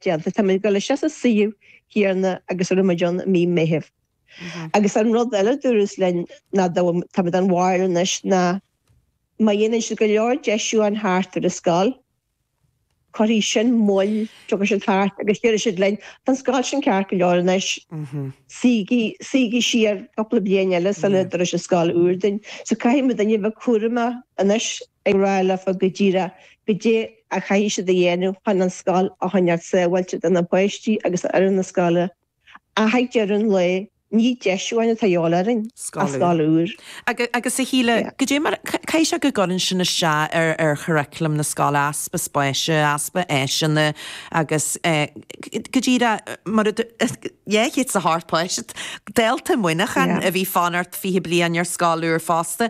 déanta. Táimid ag dul isteach sa suíomh chéanna agus a raibh muid ann i mí Meithimh. Agus an rud eile a dúras linn ná táimid an bhail anois ná má dhéanann siad go leor deisiú ann thart ar an scoil, cuirfidh sin moill, tiocfaidh siad thart agus déarfaidh siad linn, tá an scoil sin ceart go leor anois, suígí siar cúpla bliain eile sula dtabharfaidh sibh scoil úr dúinn. So caithfimid a bheith cúramach anois ag rá leofa go díreach Goidé a chaithfidh siad a dhéanamh chun an scoil a choinneáilt sábháilte do na páistí agus do fhoireann na scoile ach ag deireadh an lae ní deisiúchán atá a dhíobháil orainn ach scoil scoil úr. Agus a Shíle, Yeah. goidé mar a chaithfidh sé go gcuireann sin isteach ar ar churaclam na scoile, easpa spáise, easpa áiseanna agus eh go díreach mar a du Yeah, hits the heart, páiste, dálta Muineachán Yeah. a bhí ag fanacht fiche bliain ar scoil úr fosta.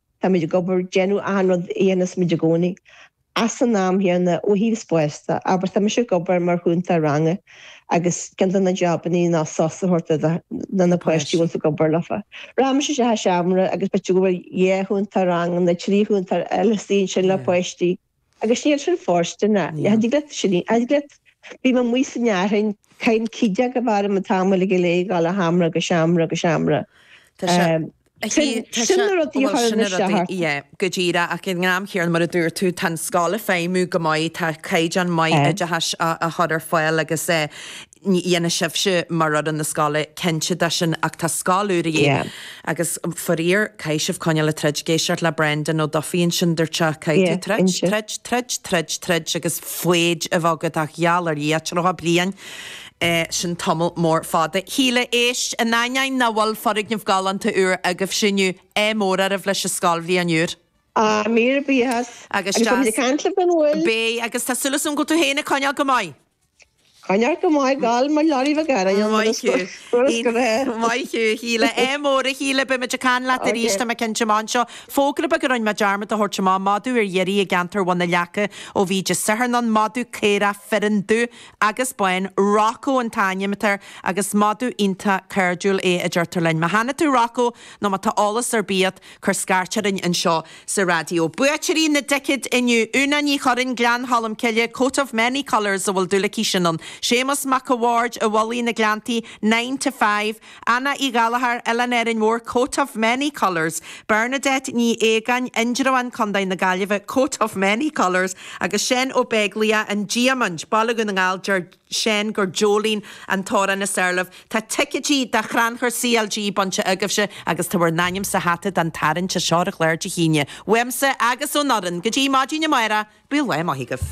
Táimid ag obair, déanamh achan rud a dhéanas muid i gcónaí. Ins an am chéanna, ó thaobh spáis de, abair, tá mise ag obair mar chúntóir ranga agus ceann de na jobannaí ná sos a thabhairt do na páistí a bhfuil tú ag obair leofa. Rachaidh mise isteach sa seomra agus b'fhéidir go bhfuil dhá chúntóir ranga nó trí chúntóir eile suí ansin le páistí. Agus níl sin fóirsteanach. Níl. Thiocfadh leat sin a, thiocfadh leat, bím amuigh san fhearthainn, caithim cith déag a bharr an tamaill ag aleigeáil ó sheomra go seomra go seomra. Tá sé, tá sé, tá sé, bhuel sin na rudaí, yeah, go díreach ach ag an am chéanna mar a dúirt tú tá an scoil ag feidhmiú go maith, tá caighdeán maith oideachais á chur ar fáil agus eh. déanfaidh sibhse mar fhoireann na scoile cinnte de sin ach tá scoil úr a dhíth agus faraor caithfidh sibh coinneáil ag troid ag éisteacht le Brendan Ó Dufaigh ansin dúirt sé caithfidh tú Yeah, troid, inse. troid, troid, troid, troid agus foighid a bheith agat ach gheall ar Dhia tríocha bliain eh sin tamall mór fada. Shíle, Éist, in ainneoin nach bhfuil foirgneamh galánta úr agaibhse inniu, ádh mór oraibh leis an scoilbhliain úr. Ah, míle buíochas. Agus Agus beimid ag deas. caint libh gan mhoill. Beidh agus tá súil agam go bhfuil tú féin ag coinneáil go maith. Coinnigh go maith gal mar Larry McGarry an rud is furast go bhfeá. Maith thú a Shíle. Ádh mór a Shíle, beimid ag caint leat arís tá mé cinnte. Anseo, fógra beag a rinne mé dearmad a thabhairt amach, madadh ar iarraidh i gceantar Bhun na Leaca ó bhí Dé Sathairn ann, madadh caorach fireann dubh agus bán, Rocco an t-ainm atá air agus madadh iontach cairdiúil é a deirtear linn. Má chonaic tú Rocco nó má tá eolas ar bith agat, Cur scairt orainn anseo sa raidió. Buaiteoirí na dticéad inniu, Úna Ní Churraoin, Gleann Cholm Cille, Coat of many colours, a bhfuil dúil aici sin ann, Séamus Mac a' Bhaird, An Mhullaigh, na Gleanntaí, Nine to Five, Anna Uí Ghallchóir, Oileán Árainn Mhór, Coat of many colours, Bernadette Ní Aogáin, Indreabhán, Co. na Gaillimhe, Coat of many colours, agus Seán Ó Beaglaoich, An Diamant, Baile Dhún na nGall, Deir. Seán gur Jolene an t-amhrán is fearr liom. Tá ticéidí do Chrannchur CLG bainte agaibhse agus tá bhur n-ainm sa hata don tarraingt anseo ar chlár Dé hAoine. Uaimse agus ón fhoireann, go dtí maidin amárach, bíodh lá maith agaibh.